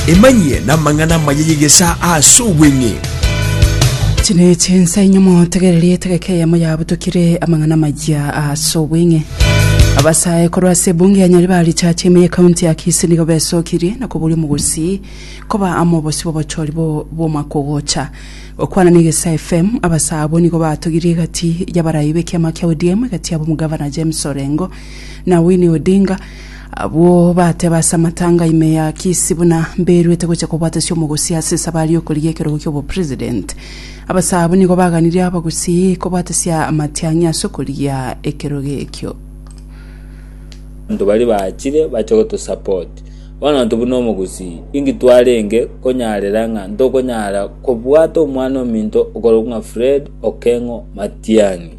Emanyie namang'ana amaya y'egesaa ase obweng'e. Echio nechi ensa enyomo, tegereria etegeka eyemo yabutokire amang'ana amaya ase obweng'e. Abasae korwa ase ebunge ya Nyaribari Richache ime y'ekaunti ya Kisii nigo besokirie na koboria omogosii koba amo obosio bw'obochori bo- bw'omwaka ogocha. Gokwana na Egesaa FM, abasae abwo nigo batogirie egati y'abarai b'ekiama kia ODM egati y'ab'omogavana James Orengo na Winnie Odinga Abwo bateeba ase amatanga ime ya Kisi buna mberuete gocha kobwatasia omogusii ase esabari y'okorigia ekerogo ki'obopresident. Abasaa abwo nigo baganirie abagusii kobwatasia amatiang'i ase okorigia ekerogo ekio. Abanto baria bachire bache gotosupport. Bono intwe buna omogusii, inki twarenge konyarera ng'a ntokonyara kobwata omwana ominto okorokwa ng'a Fred Okeng'o Matiang'i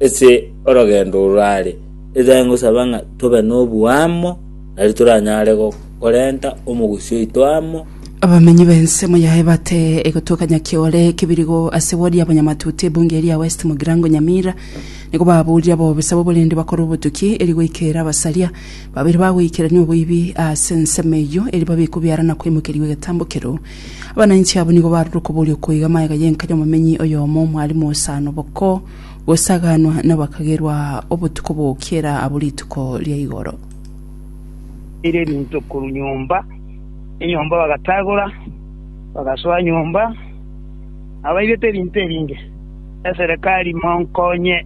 ase orogendo oro are? Erio ngosaba ng'a tobe noboamo, nari toranyare korenta omogusii oito amo. Abamenyi b'ensemo yaye bate egotuka Nyakiore, Kibirigo, ase ward ya Bonyamatuta ebunge eria ya West Mugirango Nyamira, nigo baburia bobe sabo oborende bakore obotuki eri goikera abasaria babere bagoikerania oboibi ase ensemo eyio eri babe kobiara na koimokerigwa egetambo kereo. Abanainchi abwo nigo barure okoboria oko iga magega y'enka y'omomenyi oyomo, Mwalimu Osano Boko, gosaganwa nabakagerwa obotuko bokiera abwo rituko ria igoro. Bateire ebinto korwa nyomba nenyomba bagatagora, bagasoa nyomba nabaibete ebinto ebinge. Eserekari monkonye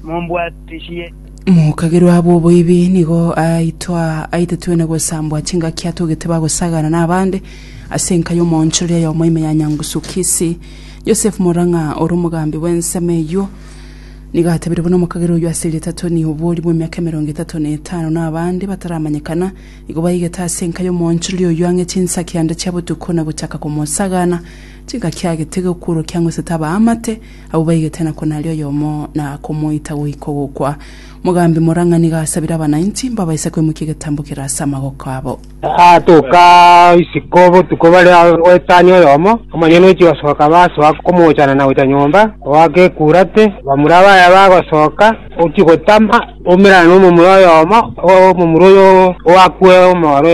mombwatisie. Mokagerwa abwo oboibi nigo aitwa aitetwe na gosambwa chingaki atogete bagosagana nabande ase enka y'omoonchoreri ayomo ime ya Nyangusu Kisii. Yosefu Morang'a ore omogambi bw'ensemo eyio, nigo atebirie buna omokagera oyio ase erieta Tony oboori bw'emiaka emerongo etato na etano na abande bataramanyekana nigo baigete ase enka y'omoonchorori oyio ang'e chinsaki ande chia botuko na gochaka komosagana chingaki agete gokworokia ang'u esete abaamate abwo baigete na konari oyomo na komoita goika ogokwa. Omogambi Morang'a nigo asabire abanainchi mbabaise kwemukia egetambo kere ase amagoko abo. Agatoka isiko botuko bare goetania oyomo, omonyene ochia gosoka basoa komoochana na gocha nyomba, ogoaka ekurate, bamura baye bagosoka, ochia gotama, oumerane nomomura oyomo, omomura oyo oakwe omooro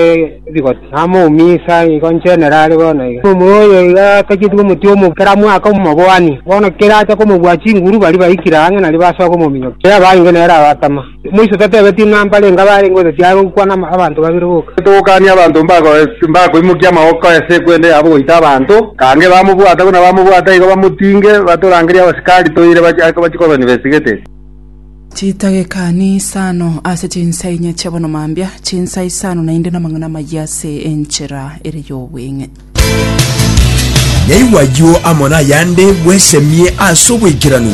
ebigoti, namouminsa igo inche nere are bono iga. Omomura oyo iga atacheti omoti omo kera mwaka omobwani, bono kera acha komobua chinguru baria baikire ang'e nario basoa komominyokia, kera abange nere abatama. Moiso tatebetie ng'a mbare inga barenge gose tiare gokwana abanto babere boka. Togokania abanto mbakoimokia amaboko ase ekwende yabo goita abanto, kange bamobwata buna bamobwata igo bamotinge, batorangerie abasikari toire bachie kobani besigete. Chitage ikani isano ase chinsa inye chi'abono mambia, chinsa isano naende namang'ana amayia ase enchera ere y'obweng'e. Naigwa ayio amo nayande bwesemie ase oboikeranu.